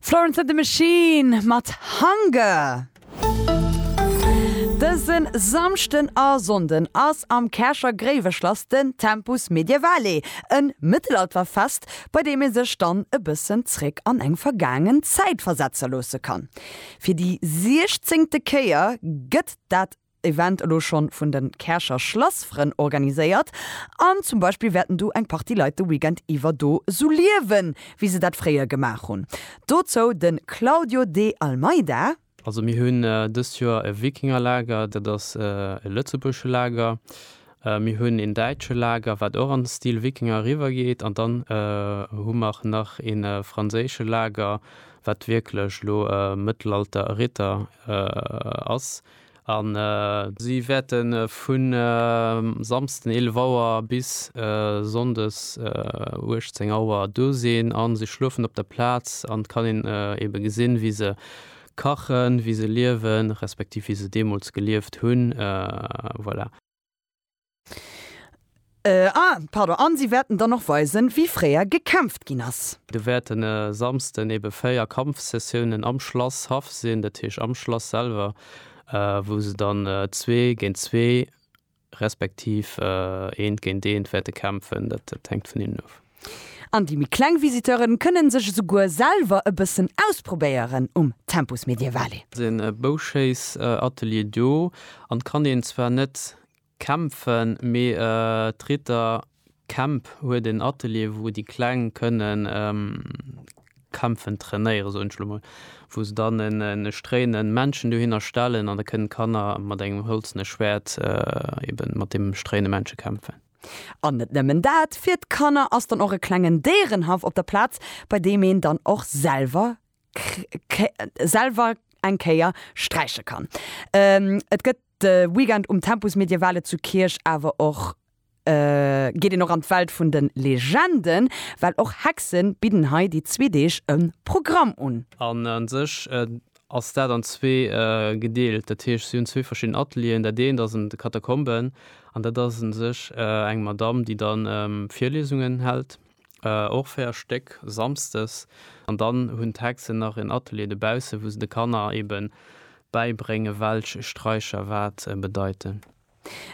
Florence and the Machine mat Hunger. Dëse Samschden a Sonnden ass am Käercher Gréiweschlass den Tempus Medievale, e Mëttelalterfest, bei deem ee sech dann e bëssen zréck an eng vergaangen Zäit versetze loosse kann. Fir déi siechzéngte Kéier gëtt dat Event elo schonn vun de Käercher Schlassfrënn organiséiert an zum Beispill wäerten du eng Partie Leit de Weekend iwwer do sou liewen, wéi se dat fréier gemaach hunn. Dozou de Claudio De Almeida. Also mir hunn dëst Joer e Wikingerlager, dat ass e lëtzebuergesche Lager. Mir hunn een däitsche Lager, wat och an Stil Wikinger eriwwer geet an dann hu mer nach ee franséische Lager, wat wierklech elo Mëttelalter-Ritter ass. An si wäerte vu Samsden 11 Auer bis Sonndes 18 Auer do sinn a se schlofen op der Plaz. An et kann een eebe gesinn, wéi se kachen, wéi se liewen, respektiv wéi se deemools gelieft hunn. Voilà. Ah, pardon. An si wäerten dann och weisen, wéi fréier gekämpft ginn ass. Do wäerten e Samsden ebe véier Kampfsessiounen am Schlasshaff sinn, dat heescht am Schlass selwer, wou se dann zwee géint zwee respektiv eent géint eent wäerte kämpfen. Dat hänkt vun hinnen of. An déi méi kleng Visiteure kënne sech esouguer selwer e bëssen ausprobéieren um Tempus Medievale. Et sinn e Bouschéissatelier do an et kann een zwar net Kämpfen, mee d'Ritter Camp huet en Atelier wou déi Kleng kënnen kämpfen trainéieren, soen ech elo mol, wou se dann e stréinen Männchen dohinner stellen an da kënnen d'Kanner mat engem hëlzene Schwäert eben mat deem stréine Männche kämpfen. An net nëmmen dat, fir d'Kanner ass dann och e klengen Déierenhaff op der Plaz, bei deem een dann och selwer selwer eng Kéier sträiche kann. Et gëtt de Weekend um Tempus Medievale zu Kierch awer och, geet een och an d'Welt vun de Legenden, well och Hexe bidden hei déi zwee Deeg e Programm un. An a sech ass dat an zwee gedeelt, dat heescht si hunn zwee verschidden Atelieren. Dat eent ass an de Katakomben an dat ass u sech eng Madamm, déi da Virliesungen hält. och 4 Stéck samsdes an dann hunn d'Hexen nach en Atelier de baussen, wou se de Kanner eben bäibréngen, welch Straicher wat bedeiten.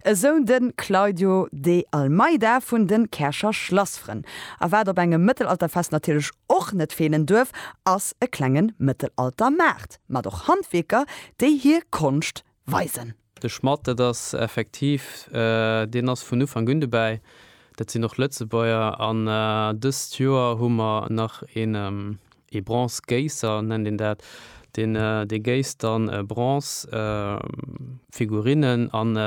Esou de Claudio De Almeida vun de Käercher Schlassfrënn. A wat op engem Mëttelalterfest natierlech och net feelen duerf, ass e klengen Mëttelaltermaart mat och Handwierker, déi hir Konscht weisen. De Schmatt, dat ass effektiv, deen ass vun Ufank un dobäi, dat sinn och Lëtzebuerger. An dëst Joer hu mer nach een, ee Bronzegéisser nennt een dat, deen dee géisst dann Bronzefigurinnen. An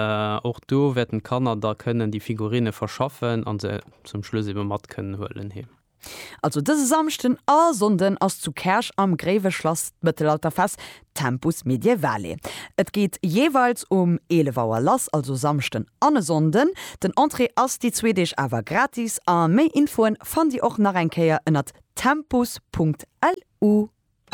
och do wäerten d'Kanner da kënnen déi Figurine verschaffen an se zum Schluss ebe mat kënnen huelen heem. Also dëse Samschden a Sonnden ass zu Käerch am Gréiweschlass d'Mëttelalterfest Tempus Medievale. Et geet jeeweils um 11 Auer lass, also Samschden an e Sonnden. Den Entrée ass déi zwee Deeg awer gratis a méi Infoen fannt Dir och nach eng Kéier ënnert tempus.lu.